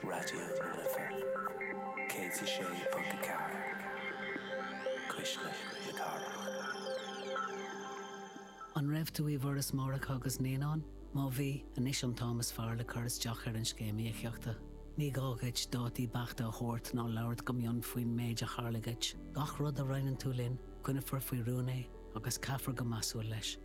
Raidió na Life 106.4, cuisle na cathrach. An raibh tú i bhForas Máithreacha agus Naíonán? Má bhí, anois an t-am is fearr le cur isteach ar an Scéim Íocaíochta. Ní gá dhuit dátaí beachta a thabhairt ná labhairt go mion faoin méid a tharla dhuit. Gach rud a roinneann tú linn, coinneofar faoi rún é agus caithfear go measúil leis.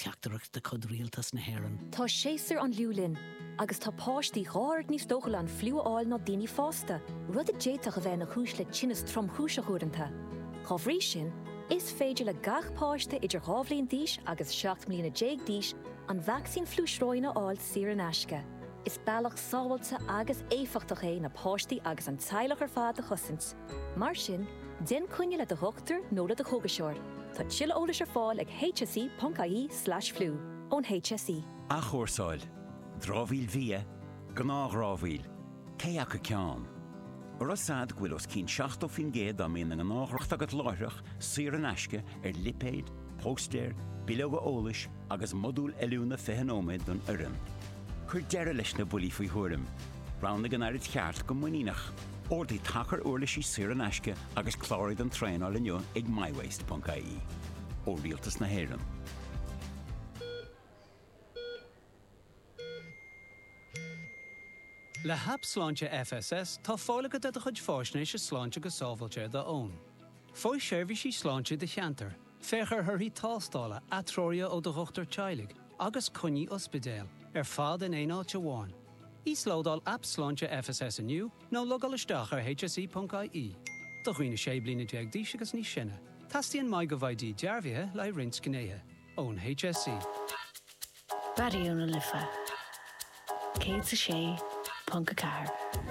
Teachtaireacht de chuid Rialtas na hÉireann. Tá séasúr an fhliú linn, agus tá páistí dhá oiread níos dóchúla an fliú a fháil ná daoine fásta, rud a d'fhéadfadh a bheith ina chúis le tinneas tromchúiseach uaireanta. Dá bhrí sin, is féidir le gach páiste idir dhá bhliain d'aois agus seacht mbliana déag d'aois an vacsaín fliú sróin a fháil saor in aisce. Is bealach sábháilte agus éifeachtach é na páistí agus an teaghlach ar fad a chosaint. Mar sin, déan coinne le do dhochtúir nó le do chógaiseoir. Tá tuilleadh eolais ar fáil ag hse.ie slash flu, ón HSE. Athchúrsáil, dramhaíl bhia, gnáthdhramhaíl, cé acu ceann? An raibh a fhios agat go bhfuil os cionn 70% dá mbíonn i ngnáthdhracht agat láithreach saor in aisce ar lipéid, póstaeir, bileoga eolais agus modúil oiliúna 20 nóiméad don fhoireann. Cuir deireadh leis na buillí faoi thuairim. Roghnaigh an araid cheart go muiníneach. Ordaigh tacar uirlisí saor in aisce agus cláraigh don traenáil inniu ag mywaste.ie. Ó Rialtas na hÉireann. Le hAip Sláinte FSS tá fáil agat ar do chuid faisnéise sláinte go sábháilte ar do fhón. Faigh seirbhísí sláinte i do cheantar. Féach ar thorthaí tástála, atreoruithe ó do dhochtúir teaghlaigh agus coinní ospidéil ar fad in aon áit amháin. Íoslódáil Aip Sláinte FSS inniu nó logáil isteach ar hse.ie. Do dhaoine 16 bliana d'aois agus níos sine, teastaíonn MyGovID dearbhaithe le roinnt gnéithe ón HSE. Raidió na Life 106.4.